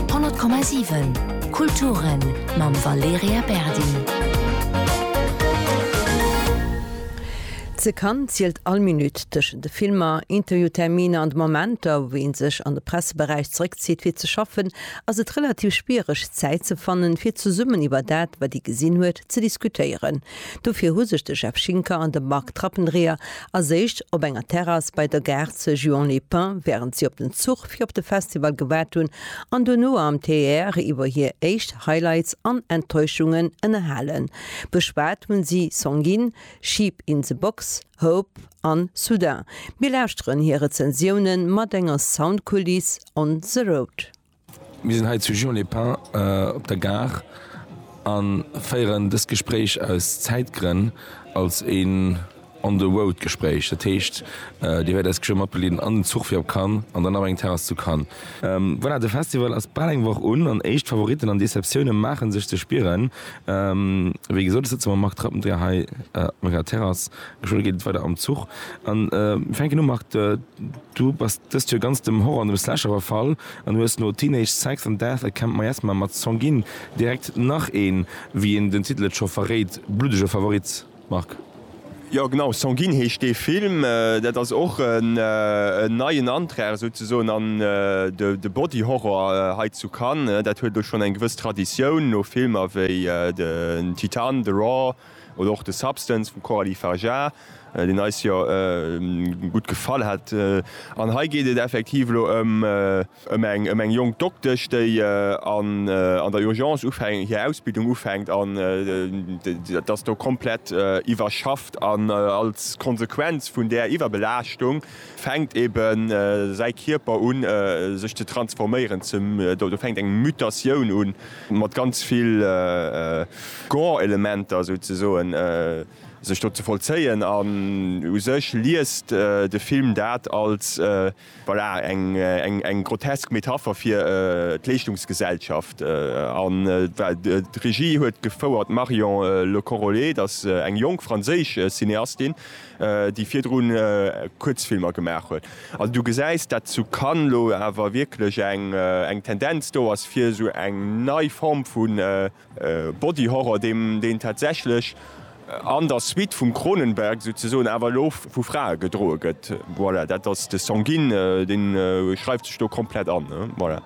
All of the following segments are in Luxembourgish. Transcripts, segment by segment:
100,7 Kulturen mam Valerija Berdi. Ze Cannes zielt all Minutt, tëschent de Filmer, Interviewterminer an de Momenter, wou ee sech an de Presseberäich zeréckzitt fir ze schaffen, ass et relativ schwiereg Zäit ze fannen, fir zesummen iwwer dat, wat ee gesinn huet, ze diskutéieren. Dofir hu sech de Jeff Schinker an de Marc Trappendreher erséicht op enger Terrass bei der Gare ze Juan-les-Pins, wärend si op den Zuch fir op de Festival gewart hunn, an dono am TER iwwer hir éischt Highlights an Enttäuschungen ënnerhalen. Beschwat hunn si Sanguine, Sheep in the Box, Hope an Soudain. Mir lauschteren hir Rezensiounen mat enger Soundkuliss on the road. Mir sinn hei zu Juan-les-Pins op der Gare a féieren dëst Gespréich aus Zäitgrënn als een On-the-Road-Gespréich. Dat heescht, Dir wäert eis geschwë matbegleeden an den Zuch fir op Cannes an dann op eng Terrass zu Cannes. Voilà, de Festival ass bal eng Woch un an éischt Favoritten an Deceptioune maache sech ze spieren. Wéi gesot, ech sëtze mam Marc Trappendreher hei op enger Terrass. Geschwë geet et weider am Zuch. Mir fänken u, Marc, du bass dëst Joer ganz dem Horror an dem Slasher verfall. An hues no Teenage Sex and Death a Camp Miasma mat Song Gin direkt nach een, wéi een den Titel et scho verréit, bluddege Favorit, Marc? Jo genau, Song Gin heescht dee Film. Dat ass och en neien Antrag souzesoen an de Body Horror hei zu Cannes. Dat huet elo schonn eng gewëss Traditioun, no Filmer wéi den Titan, The Raw, Oder och de Substance vum Coralie Fargeat, deen eis jo gutt gefall hat. An hei geet et effektiv elo ëm eng jonk Doktesch, déi an der Urgence ufänkt, hir Ausbildung ufänkt an dat ass do komplett iwwerschafft. An als Konsequenz vun där Iwwerbelaaschtung fänkt ebe säi Kierper un sech ze transforméieren, do fänkt eng Mutatioun un, mat ganz vill Gore-Elementer souzesoen sech do ze vollzéien an u sech liest de Film dat als, voilà, eng grotesk Metapher fir d'Leeschtungsgesellschaft. An d'Regie huet gefouert d'Marion Lecorrollet, dat ass eng jonk franséisch Cineastin, déi virdrun Kuerzfilmer gemaach huet. Also du gesäis, datt zu Cannes elo awer wierklech eng Tendenz do ass fir esou eng nei Form vu Body Horror, deen tatsächlech an der Suite vum Cronenberg souzesoen awer elo vu Frae gedroe gëtt. Voilà, dat ass de Sanguine, dee schreift sech do komplett an. Voilà.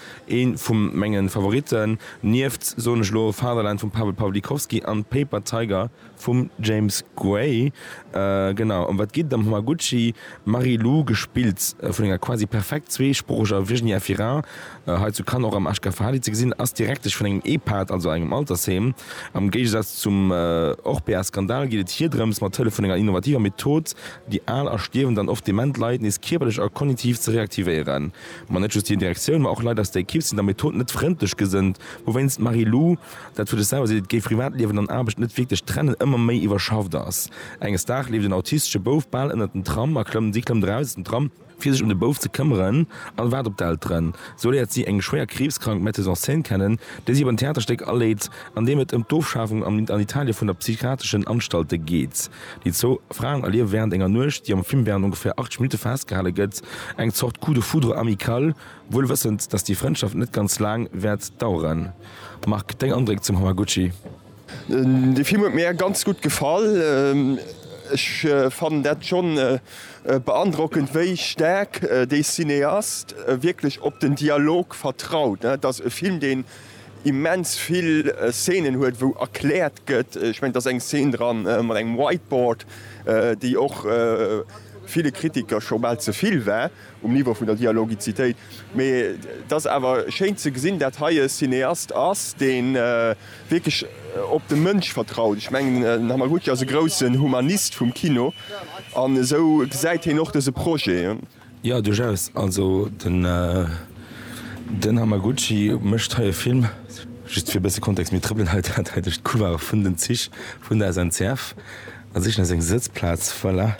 Een vum mengen Favoriten, nieft, soen ech lo, Fatherland vum Paweł Pawlikowski an Paper Tiger vum James Gray. Genau em wat geet et am Hamaguchi Marie-Lou, gespillt vun enger quasi perfekt zweesproocheger Virginia Fira, hei zu Cannes och am HK Fahadi ze gesinn, ass Direktesch vun engem Ehpad, also engem Altersheem. Am Géigesaz zum Orpea Skandal geet et hir drëms, mat Hëllef vun enger innovativer Method, déi al a stierwend an oft dement Leit nees kierperlech a kognitiv ze reaktivéieren. Ma net just hir Direktioun, ma och Leit aus der Ekipp sinn der Method net frëndlech gesënnt, wouwéinst d'Marie-Lou, dat huet ech selwer seet, d'Privatliewen an Aarbecht net wierklech trennen, ëmmer méi iwwerschafft ass. Enges Dag leeft en autistesche Bouf bal ënnert den Tram a klëmmt, si klëmmt eraus aus dem Tram, fir sech ëm de Bouf ze këmmeren an waart op d'Elteren, sou léiert si eng schwéier kriibskrank Metteuse en scène kennen, déi si op en Theaterstéck aleet, an deem et ëm d'Ofschafung an Italien vun der psychiatreschen Anstalten geet. Déi zwou Fraen erliewe wärend enger Nuecht, déi am Film wärend ongeféier 80 Minutte festgehale gëtt, eng Zort Coup de foudre amical, wuel wëssend, datt déi Frëndschaft net ganz laang wäert daueren. Marc, deng Andréck zum Hamaguchi? De Film huet mir ganz gutt gefall. Ech fannen dat schonn beandrockend, wéi staark dee Cineast wierklech op den Dialog vertraut. Dat ass e Film, deen immens vill Szenen huet wou erkläert gëtt, ech mengen et ass eng Szen dran mat engem Whiteboard, déi och ville Kritiker scho bal ze vill war um Niveau vun der Dialogizitéit, mee et ass awer schéin ze gesinn dat hei e Cineast ass dee wierklech op de Mënsch vertraut. Ech mengen den Hamaguchi ass e groussen Humanist vum Kino an esou gesäit heen och dëse Projet. Jo, duerchaus. Also den den Hamaguchi mécht hei e Film, just fir e bësse Kontext, mir trëppelen hei dat hei duerch d'Couloire vun den Zich vun der SNCF a sichen eis eng Sëtzplaz, voilà,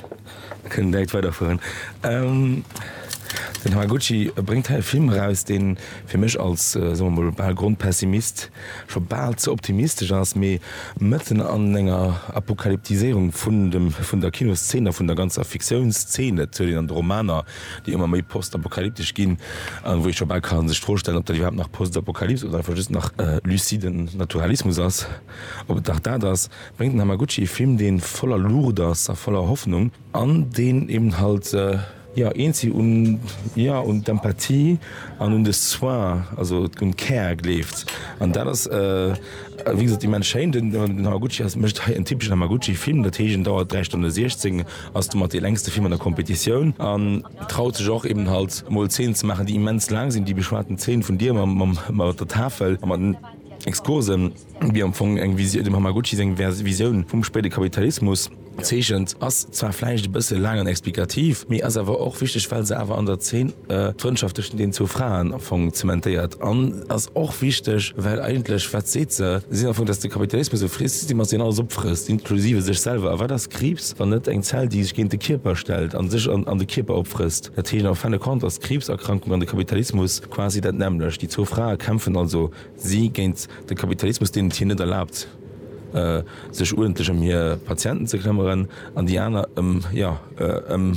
mir kënnen direkt weiderfueren. Den Hamaguchi bréngt hei e Film eraus, dee fir mech als, soe mer mol, bal Grondpessimist scho bal ze optimistesch ass, mee mëtten an enger Apokalyptiséierung vun dem, vun der Kinoszeen a vun der ganzer Fiktiounszeen, dat huet een an de Romaner, déi ëmmer méi postapokalyptesch ginn, an wou ee scho bal ka sech d'Fro stellen, ob dat iwwerhaapt nach Postapokalyps oder einfach just nach luciden Naturalismus ass, ob et nach dat ass, bréngt den Hamaguchi e Film, dee voller Luucht ass a voller Hoffnung an deen eben halt, Jo, eent si un, jo, un d'Empathie an un de Soin, also un d'Care gleeft. An dat ass, wéi gesot, immens schéin. Den Hamaguchi ass, mécht hei en typeschen Hamaguchi-Film. Dat heescht, en dauert 3 Stonne 16, ass domat dee längste Film an der Competitioun an traut sech och eben halt mol Zeenen ze maachen, déi immens laang sinn. Déi beschwate Zeen vun dir mam, mam, mat der Tafel a mat den Exkursen, déi am Fong eng Visio-, dem Hamaguchi seng Vers, Visioun vum spéide Kapitalismus, Zeechent ass zwar vläicht e bësse laang an explikativ, mee ass awer och wichteg, well se awer an der Zeen d'Frëndschaft tëschent deenen zwou Fraen am Fong zementéiert an ass och wichteg, well eigentlech, wat seet se? Se seet am Fong, dass de Kapitalismus e Frießsystem ass, deen alles opfrësst, inklusive sech selwer. A wat ass Kriibs, wann net eng Zell, déi sech géint de Kierper stellt a sech an de Kierper opfrësst? Dat heescht, en fin de compte ass Kriibserkrankung an de Kapitalismus quasi dat nämmlecht. Déi zwou Frae kämpfen also si géint de Kapitalismus, deen et hinnen net erlaabt, sech uerdentlech ëm hir Patienten ze këmmeren, an déi aner ëm, jo, ëm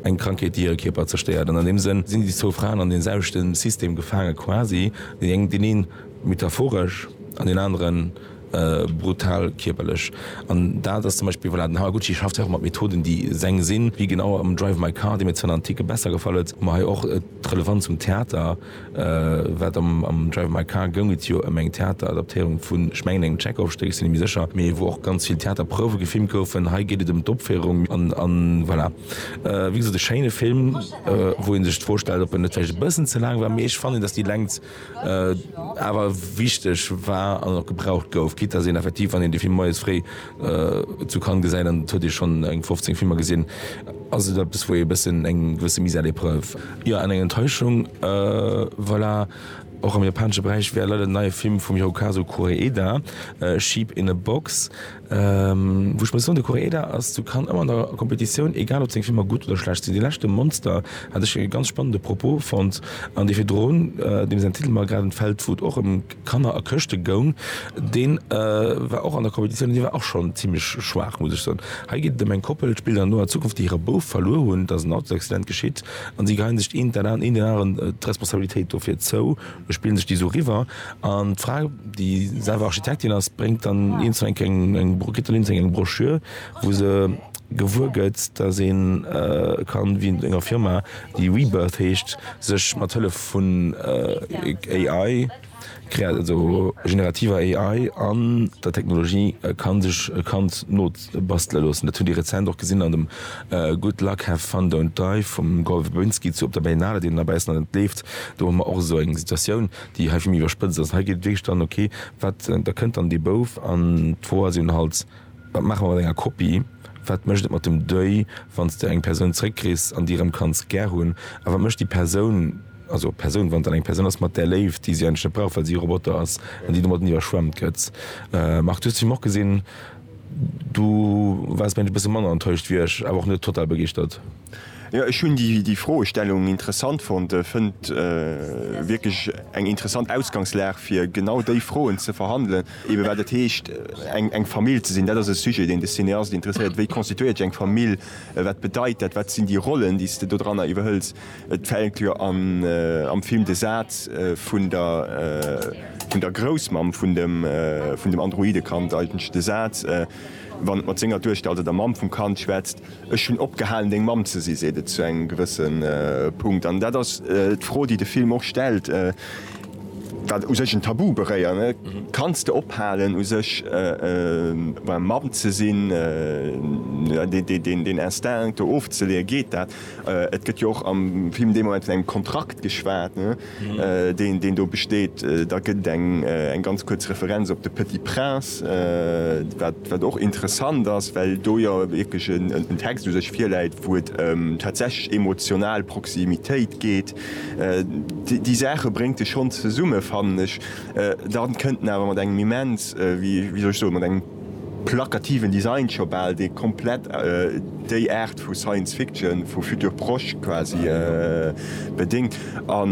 eng Krankheet, déi hire Kierper zerstéiert. An an deem Sënn sinn déi zwou Fraen an dee selwechte System gefaange quasi, déi eng, deen ee metaphoresch an deen anere brutal kierperlech. An dat ass zum Beispill, voilà, den Haraguchi schafft hei och mat Methoden, déi seng sinn, wéi genau am Drive My Car, dee mir zwar an en Tick besser gefall huet, ma hei och d'Relevanz zum Theater. Wat am Drive My Car goung et jo ëm eng Theateradaptéierung vun, ech mengen, engem Tschekov-Stéck, ech sinn net méi sécher, mee wou och ganz vill Theaterprouwe gefilmt goufen. Hei geet et ëm d'Opféierung an voilà. Wéi gesot, e schéine Film, wou ee sech d'Fro stellt, ob en net vläicht e bëssen ze laang war, mee ech fannen, datt déi Längt awer wichteg war an och gebraucht gouf, quitte datt een effektiv, wann een de Film moies fréi Zu Cannes gesäit, an et huet ee schonn eng 15 Filmer gesinn, ass et eppes wou ee e bëssen eng gewësse Mise à l'épreuve. Jo, an eng Enttäuschung, voilà. Och am japanesche Beräich war leider den neie Film vum Hirokazu Koreeda, Sheep in a Box, wou ech muss soen, de Koreeda ass zu Cannes ëmmer an der Competitioun, egal ob seng Filmer gutt oder schlecht sinn. Dee leschte Monster hat ech e ganz spannende Propos fonnt, an dee virdrun, deem säin Titel mer grad entfält, wou et och ëm. Kanner a Këschte goung, dee war och an der Competitioun, dee war och schonn zimlech schwaach, muss ech soen. Hei geet et ëm eng Koppel, et spillt an noer Zukunft, déi hire Bouf verluer hunn, et ass en Autosaccident geschitt an si geheien sech een dat an een den aneren d'Responsabilitéit dofir zou, spillen sech déi esou eriwwer an d'Fra, déi selwer Architektin ass, bréngt dann eens eng, eng, kritt dann eens eng Broschür, wou se. gewuer gëtt, dass ee kann, wéi mat enger Firma, déi Rebirth heescht, sech mat Hëllef vun AI, also generativer AI an der Technologie kann sech e Kand nobastele loossen. Dat hutt Dir rezent och gesinn an dem Good Luck, Have Fun, Don't Die vum Gore Verbinski zu op der Berlinale, deen elo baussen an et leeft. Do hu mer och esou eng Situatioun, déi hei vill méi iwwerspëtzt ass. Hei geet et wierklech dann, ok, wat, da kënnt dann dee Bouf an d'Fro ass jo dann halt, Wat maache mer mat enger Kopie? Wat mécht et mat dem Deuil, wann s de eng Persoun zeréckkriss an déi erëm kanns gär hunn? A wat mécht déi Persoun, also Persoun, wann et dann eng Persoun ass, mat där Léift, déi si eigentlech net brauch, well si e Roboter ass an déi domatten iwwerschwemmt gëtt? Marc, du hues de Film och gesinn. Du waars, mengen ech, e bësse manner enttäuscht wéi ech, awer och net total begeeschtert. Jo, ech hunn déi Froestellung interessant fonnt. Fënnt wierklech eng interessant Ausgangslag, fir genau déi Froen ze verhandelen. Eebe wat et heescht, eng Famill ze sinn. Dat ass e Sujet, deen de Cineast interesséiert. Wéi constituéiert ech eng Famill? Wat bedeit dat? Wat sinn déi Rollen, déi s de dodranner iwwerhëls? Et fällt jo am Film de Saz vun der Groussmamm vun dem Androidekand eigentlech, de Saz, wann et mat senger Duechter, also der Mamm vum Kand, schwätzt. Ech hunn opgehalen, deng Mamm ze sinn, seet et zu engem gewësse Punkt. An dat ass d'Fro, déi de Film och stellt, wat u sech en Tabu beréiert. Kanns de ophalen, u sech Mamm ze sinn, deen Instinct do ofzeleeën? Geet dat? Et gëtt jo och am Film dee Moment vun engem Kontrakt geschwat. deen do besteet. Da gëtt eng ganz kuerz Referenz op de Petit Prince, wat och interessant ass, well do jo wierklech en Text u sech virläit, wou et ëm tatsächlech emotional Proximitéit geet. Déi Saache bréngt e schonn zesumme, fannen ech. Dann kënnt en awer mat engem immens, wéi soll ech soen, mat engem. Plakativen Design scho bal déi komplett déi Aart vu Science Fiction, vu Futur proche quasi bedéngt. A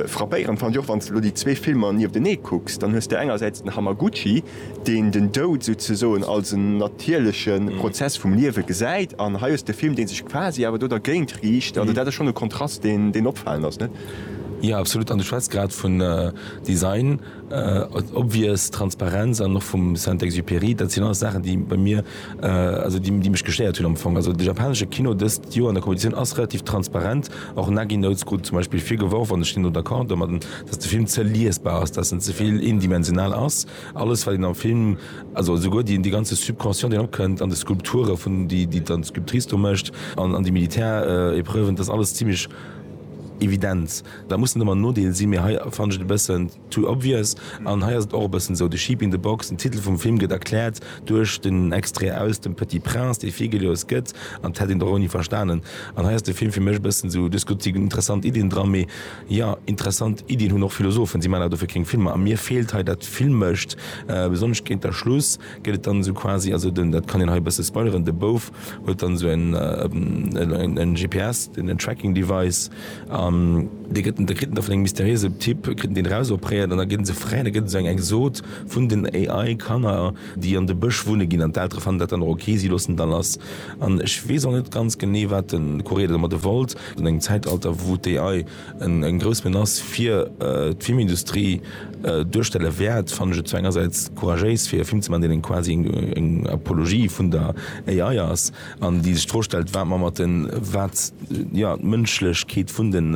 frappéierend fannt ech och, wann s de elo déi zwee Filmer nieftenee kucks, dann hues de engersäits den Hamaguchi, deen den Doud souzesoen als en natierleche Prozess vum Liewe gesäit, an hei hues de e Film, dee sech quasi awer do dergéint riicht. Also dat ass schonn e Kontrast, deen opfalend ass, net? Jo, absolut. An du schwätz grad vun Design. Obvious, Transparenz an och vum Saint-Exupéry, dat sinn alles Saachen, déi bei mir, also déi mech gestéiert hunn am Fong. Also de japanesche Kino dëst Joer an der Competitioun ass relativ transparent. Och Nagi Notes krut zum Beispill vir geworf, an ech sinn do d'accord domadden, datt de Film ze liesbar ass, datt en ze vill eendimensional ass. Alles wat een am Film, also esouguer déi dee ganze Subconscient deen opkënnt, an de Skulpture vun, déi déi dann d'Sculptrice do mécht, an déi Militärepreuven, dat ass alles zimlech evident. Da muss en ëmmer en Nodeel sinn, mee hei fannen ech et e bëssen too obvious. An hei ass et och e bëssen esou, The Sheep in the Box, den Titel vum Film gëtt erkläert duerch den Extrait aus dem Petit Prince, dee virgelooss gëtt, an dat hätt een och ouni verstanen. An hei ass de Film fir mech e bëssen esou, du hues gesot, et sinn interessant Iddien dran, mee jo, interessant Iddien hunn och Philosophen, si maachen awer dofir keng Filmer. A mir feelt hei dat Filmescht, besonnesch géint der Schluss. gëtt et dann esou quasi, also den, dat kann een hei e bësse spoileren, de Bouf huet dann esou e GPS, en Tracking Device, an dee gëtt en, da kritt en da vun engem mysteriöse Typ, kritt en deen erausopréiert an da gëtt en esou fräi an da gëtt esou eng eng Sot vun den AI Kanner, déi an de Bësch wunne ginn an d'Eltere fannen dat dann och ok, si loossen et da lass. An ech weess och net ganz genee wat de Courrier domadde wollt, an engem Zäitalter wou d'AI, eng grouss Menace fir d'Filmindustrie duerstelle wäert, fannen ech et zwar engersäits couragéis fir e Film ze maachen, deen eng quasi eng Apologie vun der AI ass, an déi sech d'Fro stellt, wat mer mat den, wat, jo, d'Mënschlechkeet vun den,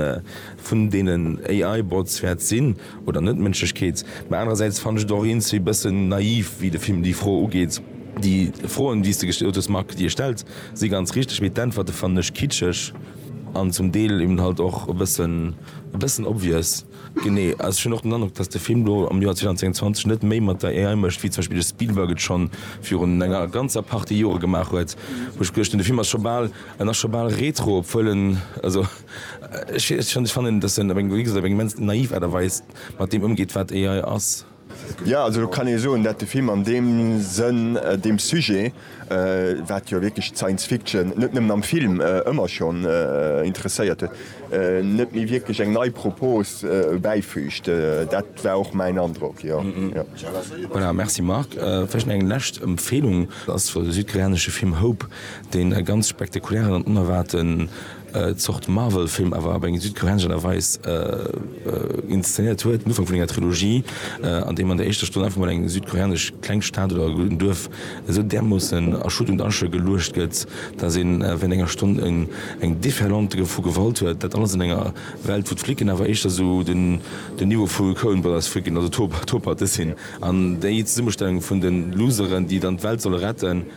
vun deenen AI-Bots wäert sinn, oder net d'Mënschlechkeet. Mä anerersäits fannen ech et och eens wéi bëssen naiv, wéi de Film déi Fro ugeet. Déi Froen, déi s de gestallt hues, Marc, déi e stellt, si ganz richteg, mee d'Äntwerte fannen ech kitscheg. An zum Deel eben halt och e bëssen, e bëssen obvious. Genee. Also ech hunn och den Androck, datt de Film do am Joer 2022 net méi mat der AI mécht, wéi zum Beispill de Spielberg et scho virun enger ganzer Partie Jore gemaach huet, wou ech geduecht hunn, de Film ass scho bal, en ass scho bal retro, obwuel en, also ech weess net, ech fannen, datt en op eng, wéi gesot, op eng immens naiv Aart a Weis mat deem ëmgeet, wat AI ass. Jo, also do kann ee soen, dat de Film an deem Sënn deem Sujet, wat jo wierklech d'Science Fiction net nëmmen am Film ëmmer schonn interesséiert huet, net méi wierklech eng nei Propos bäifüügt. Dat war och mäin Androck, jo. Voilà, merci Marc. Vläicht nach eng lescht Empfeelung. Ass de südkoreanesche Film Hope, dee ganz spektakulären an onerwaarten Zort Marvel-Film awer op eng südkoreanesch Aart a Weis inszenéiert huet, den Ufank vun enger Trilogie, an deem an der éischter Stonn einfach mol eng südkoreanesch kleng Stad oder en Duerf esou därmoossen a Schutt und Asche geluecht gëtt, dass een wärend enger Stonn eng Déferlante vu Gewalt huet, dat alles an enger Welt, wou d'Flicken awer éischter esou den Niveau vu Coen Brothers Flicken, also Tob-Hart-Dessin, an déi Zesummestellung vun de Loseren, déi dann d'Welt solle retten.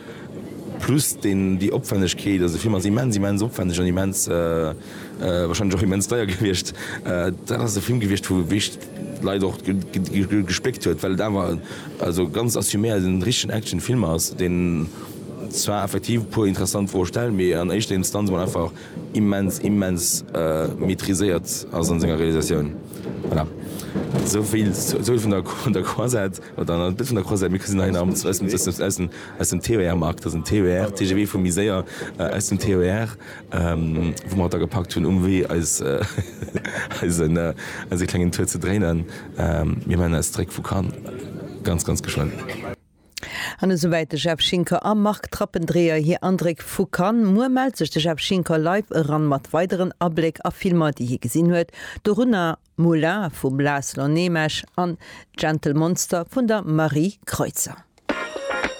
Plus déi Opwännegkeet, also déi Firma ass immens, immens opwänneg an immens, warscheinlech och immens deier gewiescht. Dat ass e Film gewiescht, wou wierklech d'Leit och gespléckt huet, well et awer also ganz assuméiert en richtegen Action-Film ass, deen zwar effektiv e puer interessant Froe stellt, mee an éischter Instanz emol einfach immens, immens maîtriséiert ass a senger Realisatioun. Voilà, esou vill, esou vill vun der Croisette. Dann e Bild vun der Croisette. Mir gesinn hei nach eppes aus dem, aus dem TER, Marc. Dat ass en TER, TGV vu méi séier, aus dem TER, wou mer haut da gepackt hunn um Wee eis, eisen, eise klengen Tour ze dréinen. Mir man eis zréck vu Cannes ganz, ganz geschwënn. An esouwäit de Jeff Schinker a Marc Trappendreher hir Andréck vu Cannes. Muer mellt sech de Jeff Schinker live eran mat weideren Abléck a Filmer, déi hie gesinn huet, dorunner. Moulin vum László Németh an Gentle Monster vun der Marie Kreutzer.